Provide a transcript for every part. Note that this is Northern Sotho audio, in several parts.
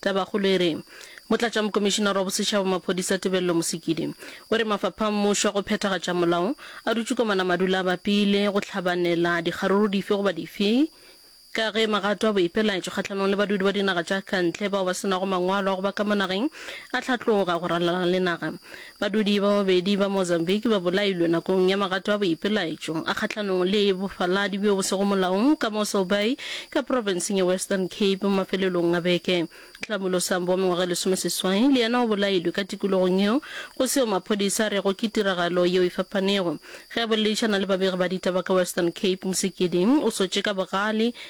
Tabakgolo e re, Motlatšamokomišinara wa Bosetšhaba wa Maphodisa Tebello Mosekidi o re mafapha a mmušo a go phethagatša molao a dutše ko manamadu le a bapile go hlabanela dikgaruru dife goba dife ka ge magato a boipelaetšo kgahlanong le badudi ba dinaga tša kantle bao ba se nago mangwalo a go ba ka mo nageng a hlatloga go ralala le naga Badudi ba babedi ba Mozambique ba bolailwe nakong ya magato a boipelaetšo a kgahlanong le bofaladi bjo bo sego molaong ka mo Sorbay ka profenseng ya Western Cape mafelelong a beke. Tlhamulo Sambo wa mengwaga e lesomeseswai le yena o bolailwe ka tikologong yeo, go seo maphodisa a rego ke tiragalo yeo e fapanego. Ge a boledišana le babegi ba ditaba ka Western Cape, Msikidzi o sotše ka bogale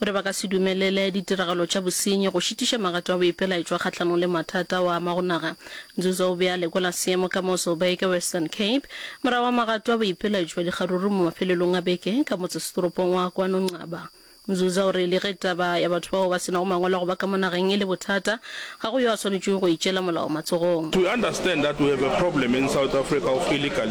Gore ba ka se dumelele ditiragalo tša bosenyi go šitiša magato a boipelaetšwa kgahlanong le mathata ao a amago naga, Nzuza o be a lekola seemo ka mo Sobeike, Western Cape, morago ga magato a boipelaetšwa dikgaruru mo mafelelong a beke ka motsesetoropong wa kwano Nqaba. Nzuza o re le ge taba ya batho bao ba se nago mangwalo a go ba ka mo nageng e le bothata, ga go yo a swanetšego go itšeela molao matsogong. To understand that we have a problem in South Africa of illegally